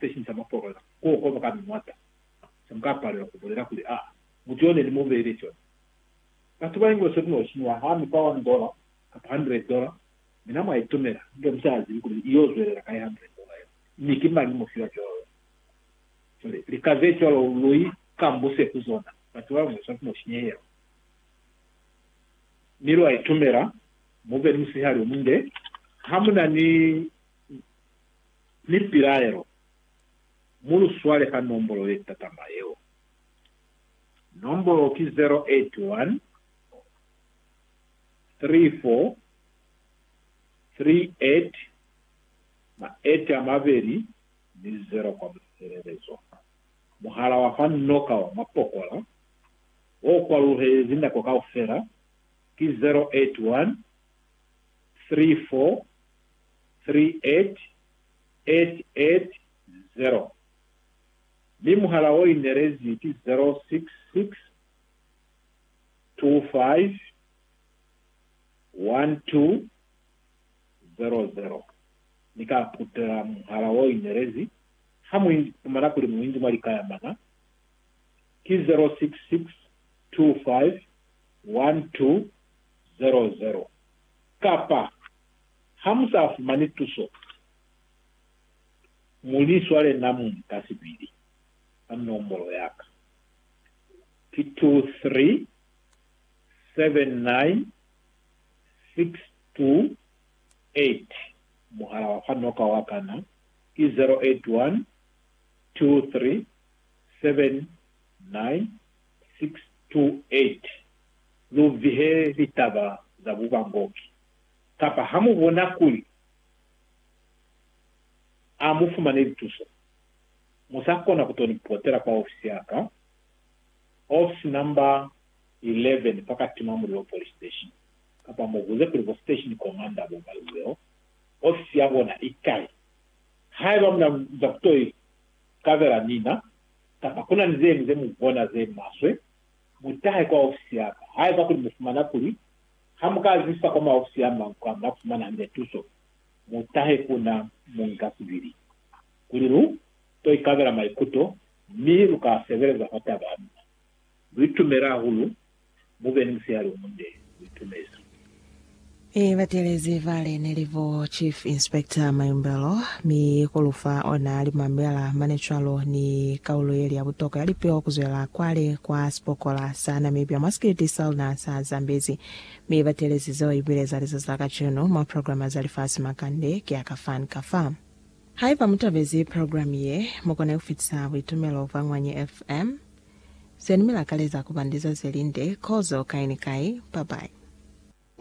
se shinca mapolola k'o koba ka miñata, se mu ka palela ku bulela kuli, Aa, mutu y'o ne ni mu beile cona. Batu ba English ku n'o shinyiwa ha mi kwa one dollar kapa hundred dollar, mi na mwa i tumela, inge mu sa zibi kuli i y'o zwelela kai hundred dollar yeo, mi ki mañi mu fiwa cwalo luli. Cwale, lika ze cwalo lu i kambuse ku zona, batu ba English ku n'o shinyehelwa, mi lwa i tumela, mu be ni musihali o munde, ha mu na ni. Ni pilaelo, Mu lu swale ka nombolo ye tatama yeo. Nombolo ki 0813438820 kwa musebelezo. Muhala wa fa noka wa mapokola o kwaluhelezi nako kaufela ki 0813438820. 38880 mi muhala o inelezi ki 0662512000. Ni ka putela muhala o inelezi ha mu ipumana kuli mu inzi mwa lika ya mana, ki 0662512000, kapa Ha mu sa fumani tuso, mu li swale na mu nka sibili ka nombolo ya ka. Ki 2379628. Muhala wa fanoka wa ka na ki 0812379628. Lu vihe litaba za bubangoki. Kapa ha mu bona kuli a mu fumane lituso, mu sa kona ku to ni potela kwa ofisi ya ka, ofisi namba 11 fa ka Tima Mulilo Police Station, kapa mu buze kuli bo Station Commander bo Balzeo ofisi ya bona i kai. Haiba mu na za ku to ikabela mina, kapa ku na ni ze ñwi ze mu bona ze maswe, mu tahe kwa ofisi ya ka. Haiba kuli mu fumana kuli Ha mu ka zisa kwa maofisi a mañi kwa nga fumana hande tuso, mu tahe ku na muñikasibili kuli lu to ikabela maikuto mi lu ka sebeleza fa taba ya luna. Lu itumele hahulu. Mu be ni musihali o munde. Lu itumezi. I latelezi vale ne li bo Chief Inspector Mayumbelo. Mi kolufa ona limambela mane cwalo ni kaulo yeli ya butokwa ya lipeo kuzwela kwale kwa sipokola sa Namibia mwa sikiliti sa luna sa Zambezi. Mi batelezi zeo ibile za lizazi la kacenu mwa programa za lifasi makande ki a ka fan ka fa. Haiba mutabezi program ye, mukone kufitisa buitumelo bwa Ngwanyi FM. Zeni milakaleza kuba ndiza zelinde, kozo kai ni kai. Bye bye.